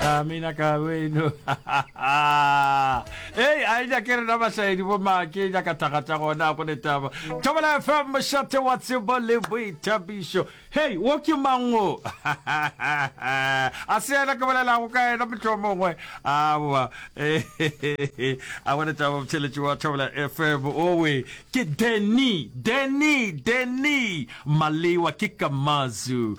amina ka weno ei a e nyake rena bašaedi bo make e nyaka thagata gona go ne taba thobela fm mošate wa tsebo le boithabišo hei wo ke mango a se ena ke bolelago ka ena motho mongwe aowa a gone taba botšheletši wa thobela fm owe ke deni deni deni malewa ke kamazu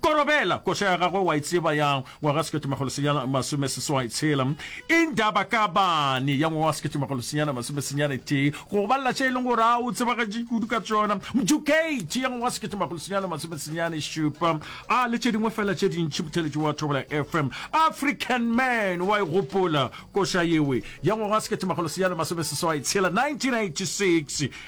Korobela, koša ya gagwe wa e tseba ya ngwaga wa sekete makgolo senyana masome seswai tshela, Indaba Kabane ya ngwaga wa sekete makgolo senyana masome senyane tee, go go balela tše e leng gore a o tsebagatše kudu ka tšona, Mdukate ya ngwaga wa sekete makgolo senyana masome senyane šupa, a le tše dingwe fela tše dintši. Motheletši wa Thobela ya FM, African Man, wa e gopola koša yewe ya ngwaga wa sekete makgolo senyana masome seswai tshela, 1986.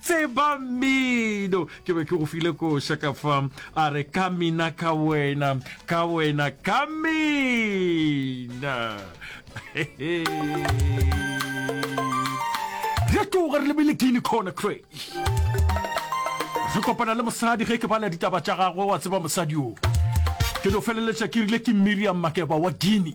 tseba mmino ke be ke go file koša ka fa a re ka mina ka wena ka wena ka mina re tloga re lebile guine corner cray re kopana le mosadi ge ke bala ditaba tša gagwe wa tseba mosadi o ke no feleletša ke rile ke miriam makeba wa guine